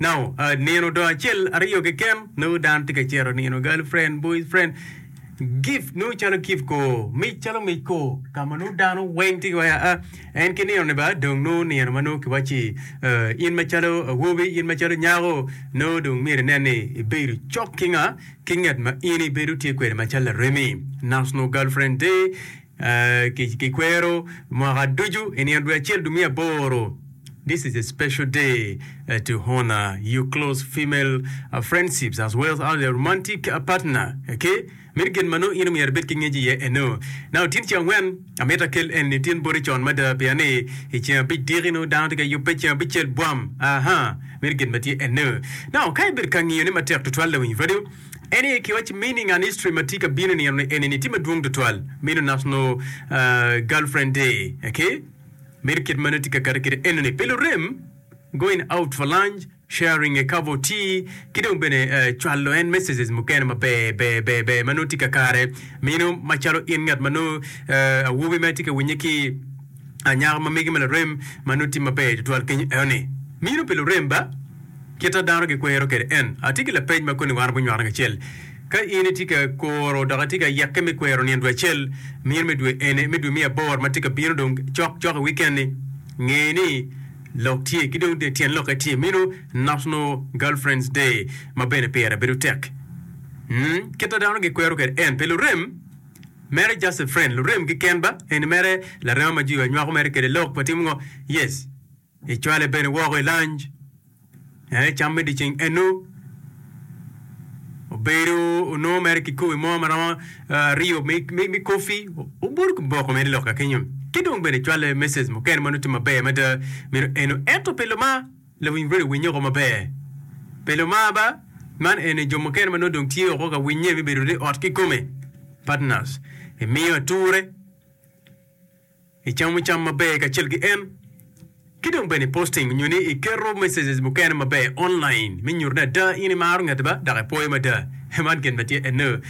Nao nino do acel aryo keken nongo dano tye ka cito nino girl friend, boy friend, gift nongo calo gift ko, mic calo mic ko ka ma nongo dano weng tye wai aa. En ki nino ni ba dong nongo nino ma nongo kiwaci eh, in macalo awobi, in macalo nyako nongo dong myero inen ni ibedo cok ki nga? Ki ngat ma in ibedo tye kwede macalo laremi. National girl friend day. Ki kwero mwaka ducu i nino dwe acel dwe me aboro This is a special day to honor your close female friendships as well as your romantic partner ki meno gin ma nongo in omyero ibed ki ngec iye eno na otin ceng angwen amito akel eni otin boti con mada pien ni i ceng abic diki nongo dano tye ka yubbe ceng abicel bwam aahaa meno gin ma tye eno now ka ibedo ka ngiyo ne matek tutwal lawiny radio En aye kiwaci meaning and history matye ka bino nino ni enini tye madwong tutwal meno national girlfriend day ok meno kit manongo tye ka kati kede enini pi lurem going out for lunch sharing a cup of tea ki dong bene cwalo en messages mukene maber ber ber ber manongo tye kakare meno macalo in ngat manongo awobi ma itye ka winye ki anyaka ma mege ma lurem manongo tye maber tutwal kenyo enoni meno pi lurem ba. Kit ma dano gikwero kwede en. Atye ki lapeny ma koni warbo nywako kacel. Ka in itye ka kuro dok itye ka yeke me kwero nino dwe acel, mino me dwe eni, me dwe me abor ma tye ka bino dong cok cok i wiken-ni, nge ni lok tye. Ki dong tyen lokke tye mino National Girlfriends Day ma bene pire bedo tek. Umm, kit ma dano gikwero kwede en. Pi lurem, mere just a friend, lurem keken ba, eni mere larema ma jwiwa nywako mere kwede lok, watimo ngo? Yes. Icwale bene woko i lanj, en ecam me dyeceng enu. Obedo onongo mere ki kobi mo ma romo aryo me kofi, obuto ki boko mere loka kenyo. Ki dong bene icwale mecej mukene ma nongo tye maber mada meno enu. Ento pe lomar lawiny redio winye oko maber. Pe lomar ba, man eni jo mukene ma nongo dong tye woko ka winye me bedo ni ot kikome, partners, emiyo ature. Icamo cam maber kacel ki en, ki dong bene iposting nyo ni iketo messages mukene maber online me nyuto ni ada in imaro ngeti ba dok ipwoyo mada. Man gin ma tye eno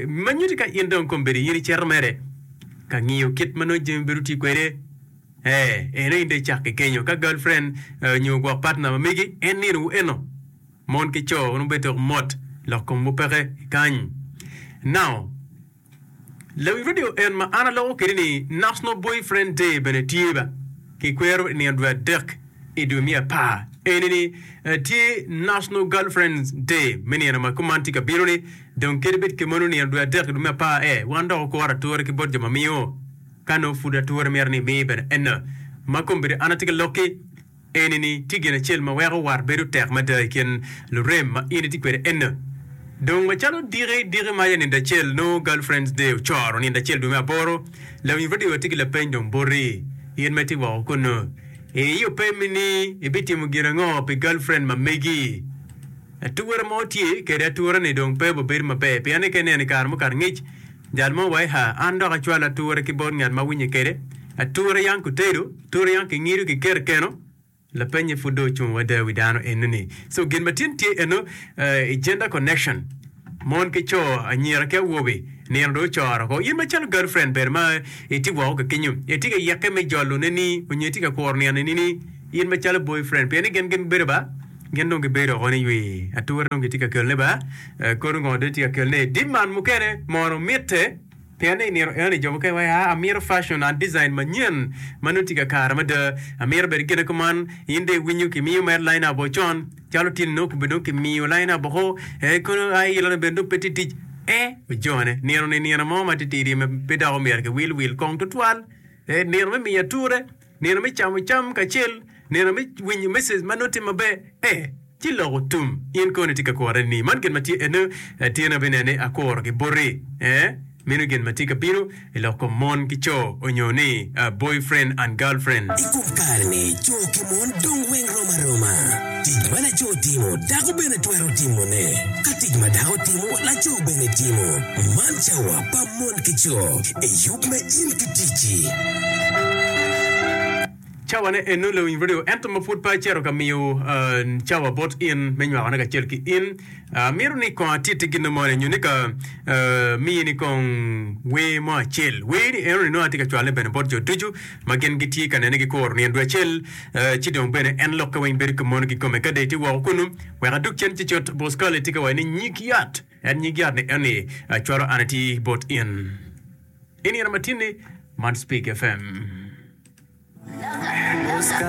ma nyuti ka in dong kombeddi in icito mere ka ngiyo kit ma nongo Jami bedo tye kwede. Ee, eno in dong icak ki kenyo ka girlfriend nyo gwok partner ma megi en ninowu eno. Mon ki co nongo bedo tok mot lok komwu peke ikany. Now. Lawiny radio en ma an aloko kede ni National Boyfriend Day bene tye ba ki kwero i nino dwe adek i dwe me apar. Eni ni tye National Girlfriends Day me nino ma kuman tye ka bino ni dong kadi bed kemon i nino dwe adek i dwe me apar e wan dok okoro ature ki bot jo ma miyo ka nongo pud ature mito ni imi bene enno ma kombeddi an atye ka lokki Eni-ni tye gin acel ma weko wat bedo tek mada i kin lurem ma in itye kwede enno. Dong macalo diki diki maca nindo acel nongo Girlfriends Day ocoro nindo acel dwe me aboro, lawiny radio watye ki lapeny dong boti, in ma itye woko kunnu. Ii opemi ni ibitimo gin ango pi girlfriend ma megi? Atura mo tye kede atura-ni dong pe oba bedo maber pien ni ka ineno i kare mukato ngic, jal mo wa i haa, an dok acwalo atura ki bot ngat ma awinye kede, atura yam kutedo, Turiang ki ngido ki kero keno, lapenye pud dong ocung wada wi dano eno ni. So gin ma tin tye eno i gender connection mon ki co, anyira ki awobe nino dong ocoro ko. In macalo girl friend bene ma itye woko ki kenyo, itye ka yeke me jolo ne ni onyo itye ka kuro nino ni in macalo boy friend pien ni gin gin bedo ba gin dong gi bedo woko ni ywe ature dong gitye ka kelone ba kono ngo dong itye ka kelone. Demand mukene mono mitte. Pien ni imito eno ni jo mukene waco, aa, amito facon, aa, design manyen ma nongo tye ka kare mada. Amito bedo gine kuman. In dong iwinyo kimiyo mere line-up woko con. Calo tye-ni nongo kobe dong kimiyo line-up woko, ee, kono aa, ilone bene dong pe tye tic. Ee, ojone. Nino-ni nino mo matitidi ma pe dok omyero kiwil wil kong tutwal. Ee, nino me miyo ature. Nino me camo cam kacel, nino me winyo message ma nongo tye maber, ee, ci loko tum. In kono itye ka kworre ni, Man gin ma tye ene, tyen aye bene ni akuro ki boti. Ee, meno gin ma tye ka bino i lok kom mon ki co, onyo ni boyfriend and girlfriend. I kom kare-ni, co ki mon dong weng rom aroma. Tic ma laco timo, dako bene twero timone. Ka tic ma dako timo, laco bene timo. Man cawa. pa mon ki co i yub ma in ki ticci. Cawa ne eno lewiny radio ento ma pud pe acito ka miyo cawa bot in me nywako ne kacel ki in. Amito ni kong atitti ginno moni nyo ni ka miyi ni kong wer mo acel. Wer ni eno ni nongo atye ka cwal ne bene bot jo ducu ma gin gi tye ka nene gi koro nino dwe acel ci dong bene en lokke weng bedo ki mono ki kome ka dee tye woko kunu wek adug cen ci cut Boscali tye ka waco ni nyig yat En nyig yat ni eni acwalo an ati bot in. I nino matinni, man Spig FM.